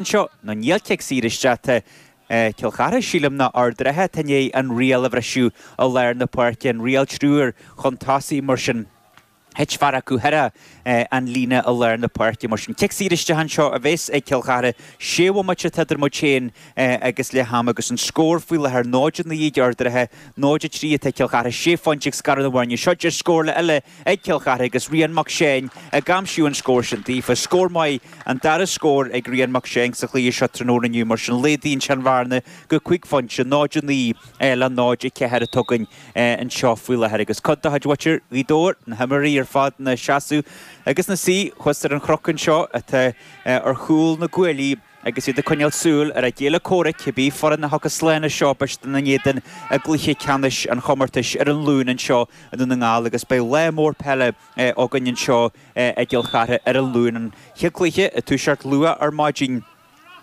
seo nó níl cic saor isteach atá ag Cill Chartha, sílim, ná Ard an Rátha, tá i ndiaidh an riail a bhriseadh i lár na páirce, an riail triúr chun tosaigh, mar sin. Thit fear acu thar an líne i lár na páirce, mar sin. Cic saor isteach anseo a bheas ag Cill Chartha, sé bhomaite atá idir muid féin agus leath ama agus an scór faoi láthair 0-9 ag Ard an Rátha, 0-3 atá ag Cill Chartha, sé phointe ag scaradh na bhfoirne. Seo deis scórála eile ag Cill Chartha agus Rian Mac Seáin ag aimsíú an scór sin daofa. Scór maith. An dara scór ag Rian Mac Seáin sa chluiche seo tráthnóna inniu mar sin laghdaíonn sin an bhearna go cúig phointe, 0-9 le 0-4 atá againn anseo faoi láthair agus cuid de chuid mhuintir Ghaoth Dobhair, na himreoirí ar fad ina seasamh agus ina suí thuas ar an chnoc anseo atá ar chúl na gcuaillí agus iad ag coinneáil súil ar a gcéile comhraic, cibé foireann a thiocfas slán as seo, beidh siad ina n-éadan i gcluiche ceannais an chomórtais ar an Luan anseo i nDún na nGall agus beidh lá mór peile againn anseo i i gCill Chartha ar an Luan an chéad cluiche ag toiseacht luath ar maidin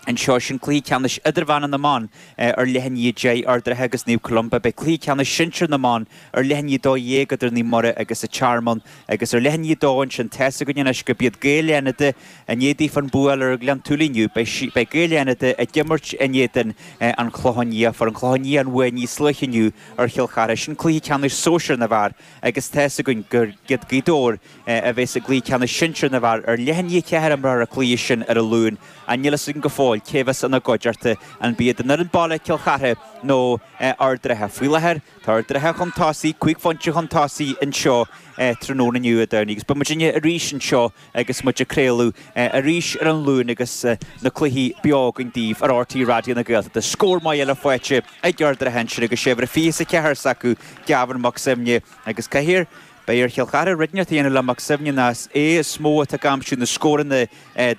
anseo. Sin cluiche ceannais idirmheánach na mban ar leath i ndiaidh a deich, Ard an Rátha agus Naomh Columba. Beidh cluiche ceannais sinsir na mban ar leath i ndiaidh a dó dhéag idir Naomh Muire agus An Tearmann agus ar leath i ndiaidh a dó ansin. Tá's againn anois gurb iad Gaeil Fhánada i ndiaidh daofa an bua a fháil ar Ghleann tSúilí inniu. Beidh Gaeil Fhánada ag imirt in éadan An Chlocháin Liath. Fuair An Clochán Liath an bhuaidh níos luaithe inniu ar Chill Chartha. Sin cluiche ceannais sóisir na bhfear agus tá's againn gurb iad Gaoth Dobhair, a bheas i gCluiche Ceannais Sinsear na bhFear ar leath i ndiaidh a ceathair a imreofar an cluiche sin ar an Luan ach níl fhios againn go fóill cé a bheas ina gcuideachta, an b'iad an fhoireann baile, Cill Chartha, nó Ard an Rátha. Faoi láthair, tá Ard an Rátha chun tosaigh, cúig phointe chun tosaigh anseo tráthnóna inniu, Dé Domhnaigh, agus beidh muidinne arís anseo agus muid ag craoladh arís ar an Luan agus na cluichí beo againn daoibh ar RTÉ Raidió na Gaeltachta. Scór maith eile faighte ag Ard an Rátha ansin agus sé uimhir a fiche is a ceathair s'acu, Gavin Mac Suibhne agus cé Beidh ar Chill Chartha rud inteacht a dhéanamh le Mac Suibhne ná is é is mó atá ag aimsiú na scóranna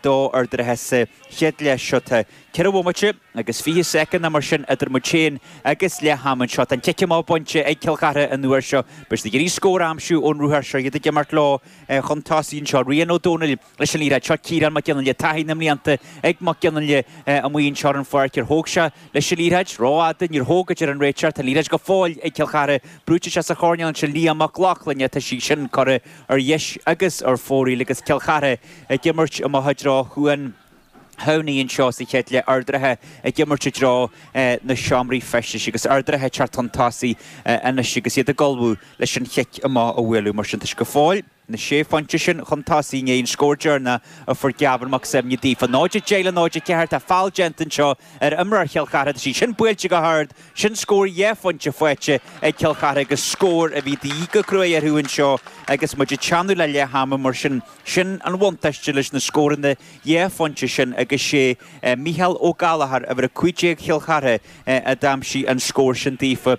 do Ard an Rátha sa chéad leath seo. Tá ceithre bhomaite agus fiche soicind ná mar sin idir muid féin agus leath am anseo. Tá an cic amach bainte ag Cill Chartha an uair seo. Beidh siad ag iarraidh scór a aimsiú ón ruathar seo, iad ag imirt leo chun tosaigh anseo. Rian Ó Dónaill. leis an liathróid seo Ciarán Mac Fhionnghaile Taithí na mblianta ag Mac Fhionnghaile amuigh anseo ar an pháirc Ar thóg sé leis an liathróid rófhada? Níor thóg, a deir an réiteoir Tá an liathróid go fóill ag Cill Chartha Brúite isteach sa choirnéal ansin Liam Mac Lochlainn Tá sí sin curtha ar dheis agus ar fóraoil Agus Cill Chartha ag imirt amach i dtreo Chuan Thamhnaigh anseo sa chéad leath Ard an Rátha ag imirt i dtreo na seomraí feistis agus Ard an Rátha ag teacht chun tosaigh anois agus iad ag ullmhú leis an chic amach a bhualadh Mar sin tá sé go fóill na sé phointe sin chun tosaigh i ndiaidh an scóir deireanach a fuair Gavin Mac Suibhne daofa. 0-10 le 0-4, tá feall déanta anseo ar imreoir Chill Chartha, is í sin buailte go hard, sin scór dhá phointe faighte ag Cill Chartha agus scór a bhí de dhíth go cruaidh orthu anseo agus muid ag teannadh le leath ama mar sin sin an bhuntáiste leis na scóranna dhá phointe sin agus sé Micheál Ó Gallachóir, uimhir 15 Chill Chartha, a d'aimsigh an scór sin daofa.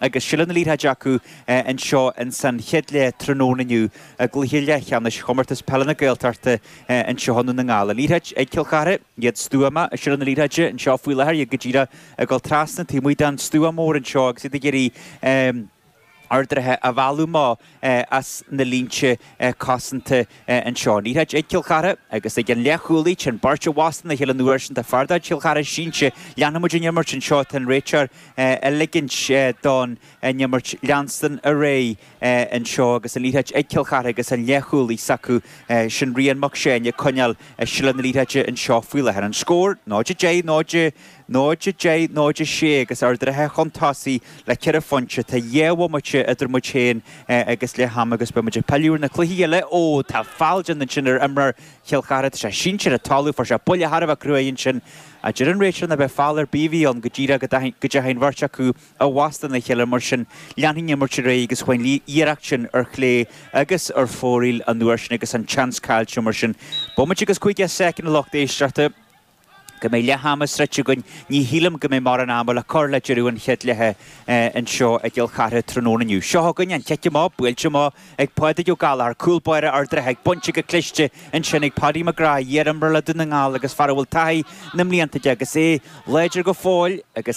agus seilbh na liathróide acu anseo ins an chéad leath tráthnóna inniu i gcluiche leathcheannais Chomórtas Peile na Gaeltachta anseo i nDún na nGall. An liathróid ag Cill Chartha, iad stuama i seilbh na liathróide anseo faoi láthair, iad go díreach ag dul trasna taobh amuigh den stua mór anseo agus iad ag iarraidh Ard an Rátha a mhealladh. as na línte cosanta anseo. An liathróid ag Cill Chartha agus ag an leath-chúlaí, chuaigh an bheirt i bhfastó ina chéile an uair sin. Tá fear de chuid Chill Chartha sínte. Leanfaimid an imirt anseo. Tá an réiteoir ag ligint don imirt leanstan ar aghaidh anseo agus an liathróid ag Cill Chartha agus an leath-chúlaí s'acu, sin Ryan Mac Seáin, ag coinneáil seilbh na liathróide anseo faoi láthair. An scór, 0-10, 0. 0, 10, 0, 6, agus Ard an Rátha chun tosaigh le ceithre phointe. Tá dhá bhomaite idir muid féin agus leath ama agus beidh muid ag pilleadh ar na cluichí eile. Ó, tá feall déanta ansin ar imreoir Chill Chartha. Tá sé sínte ar an talamh. Fuair sé buille thar a bheith cruaidh ansin. a deir an réiteoir. nach b'é feall ar bith a bhí ann go díreach go dteachaigh an bheirt acu i bhfastó ina chéile mar sin. Leanfaidh an imirt ar aghaidh agus chuaigh an iarracht sin ar chlé agus ar fóraoil an uair sin agus an tseans caillte mar sin. Bomaite agus 50 soicind lucht éisteachta. go mbeidh leath ama sroichte againn, ní shílim go mbeidh mórán ama le cur le deireadh an chéad leithe anseo i gCill Chartha tráthnóna inniu. Seo chugainn an chic amach, buailte amach ag Pádraig Ó Gallachóir, cúl báire Ard an Rátha agus bainte go cliste ansin ag Paddy McGrath, iar-imreoir le Dún na nGall agus fear a bhfuil taithí na mblianta aige agus é láidir go fóill agus